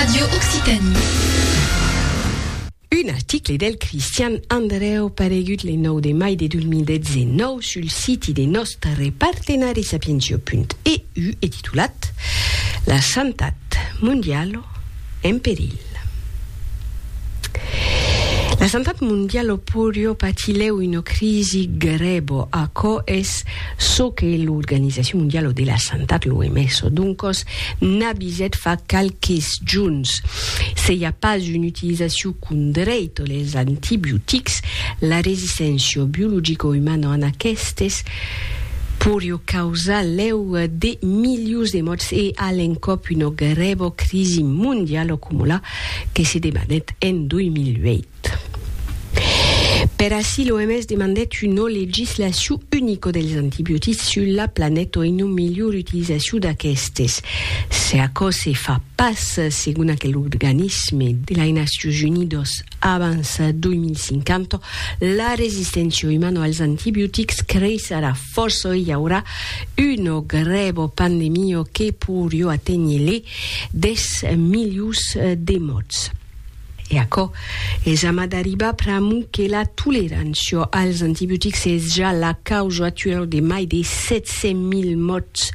Radio Occitanie. Un article del Cristian Andrèu paregut le 9 de mai de 2019 sul siti de nòstre partenari sapientio.eu e titulat La santat mondialo en perilh. La santat mondialo porio patilhèu una crisi grèbo, aquò es çò que l'Organizacion mondialo de la santat, l'OMS, doncòs, N'a bizet fa qualques juns. Se i a pas un utilizaciu condreit les antibiotics, la resisténcia biologico-umana an aquestes poriu causar lèu de milius de mòrts e a l'encòp una grèva crisi mondiala coma la que se debanèt en 2008. Per aicí, l'OMS demandèt una legislacion unica dels antibiotics sus la planeta o una melhor utilizacion d'aquestes. Se aquò se fa pas, segon aquel organisme de lai Nacions Unidas, abans 2050, la resisténcia umana als antibiotics creissarà fòrça e i aurà una grèva pandemia que poiriá aténher les 10 milions de mòrts. E aquò es amat d'arribar pr'amor que la tolerancia als antibiotics es ja la causa actuala de mai de 700.000 mòrts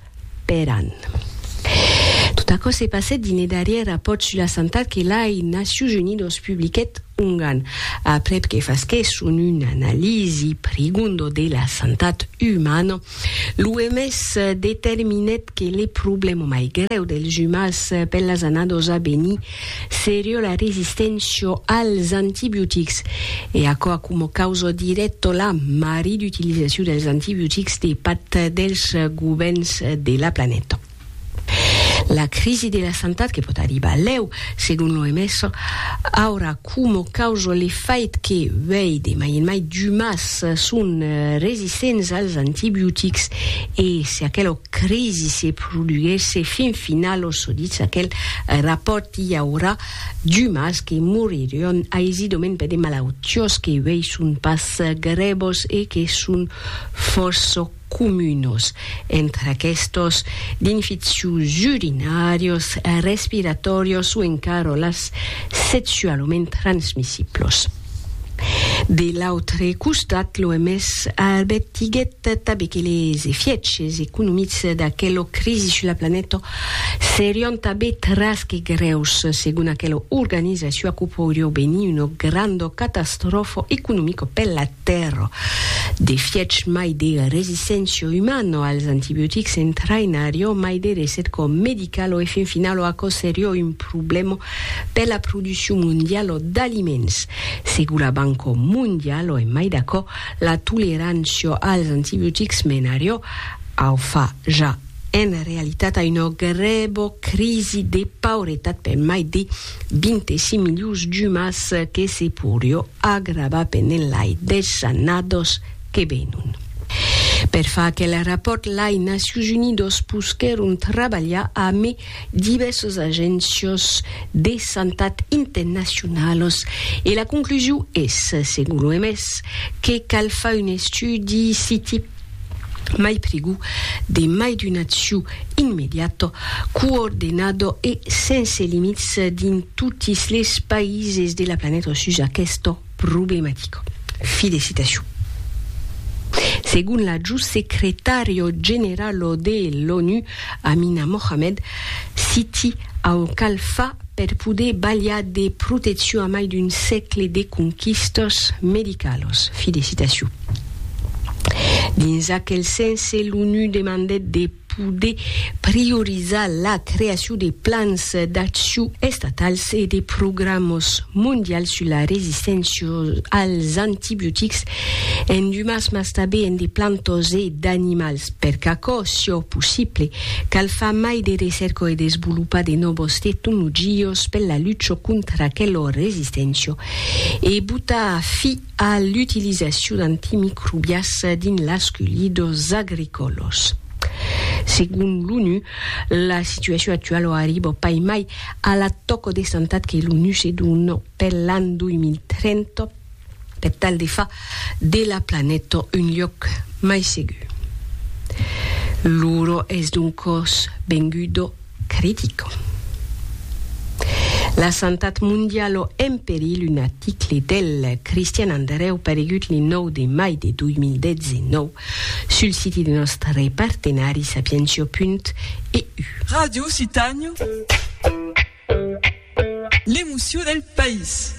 per an. Tot aquò se passèt dins le darrièr rapòrt sus la santat que las Nacions Unidas publiquèt ongan, aprèp que fasquèsson una analisi prigonda de la santat umana, L'OMS determinèt que le problèma mai grèu dels jumals per las annados a venir seriá la resisténcia als antibiotics, e aquò a coma causa dirècta la marid'utilizacion dels antibiotics de part dels govèrns de la planeta. La crisi de la santat que pòt arribar lèu, segon l'OMS, aurà coma causa le fait que uèi de mai en mai d'umans son resistents als antibiotics e se aquela crisi se produguèsse fin finala, çò ditz aquel rapòrt, i aurà d'umans que moriràn aisidament per de malautiás que uèi son pas grèvas e que son fòrça comunos, entre aquestos, d'infeccions urinàrios, respiratòrios o encara las sexualament transmissiblos. De l'autre costat, l'OMS arbertiguèt tanben que les efièches economics d'aquela crisi sus la planeta serián tanben tras que grèus, segon aquela organizacion aquò poiriá venir una granda catastròfa economica per la Però, de fièch mai de resisténcia umana als antibiotics entraïnarió mai de recet quò medical o e fin final o aquò serió un problèma per la produccion mondiala d'aliments. Segur la Banca Mondiala e mai d'aquò, la tolerància als antibiotics menarió au fa ja en realitat a una grèva crisi de pauretat per mai de 25.000 jumas que se porio agravar pendent lai 10 annados que venon. Per far aquel rapòrt lai Nacions Unidos posquèron trabalhar ame divèrsas agéncios de santat internacionalos e la conclusion es, segon l'OMS, que cal far un estudi si mai prigu de mai d'un acciu immediato, coordenado e sense limits dins totis les païses de la planeta sus aquesta problematica. Filecitacion. Segon l'adjut secretario generalo de l'ONU, Amina Mohamed, citi au cal fa per poder balhar de proteccion a mai d'un sègle de conquistas medicalas. Filecitacion. Dins aquel sense, l'ONU demandèt de poder priorizar la creacion de plans d'accion estatals e de programas mondials sus la resisténcia als antibiotics en d'umans mas tanben en de plantas e d'animals. Per qu'aquò siá possible, cal far mai de recèrca e desvolopar de nòvas tecnologias per la lucha contra aquela resisténcia e botar fi a l'utilizacion d'antimicrobias dins las culhidors agricolos. Segon l'ONU, la situacion actualo arribo pas mai a la tòco de santat que l'ONU se dona per l'an 2030 per tal de far de la planeta un luòc mai segur. L'uro es doncòs vengudo Critico. La santat mondialo en perilh Un article del Christian Andereu paregut li 9 de mai de 2019 sul siti de nòstre partenari sapientia.eu. Ràdio Occitània, l'emocion del país.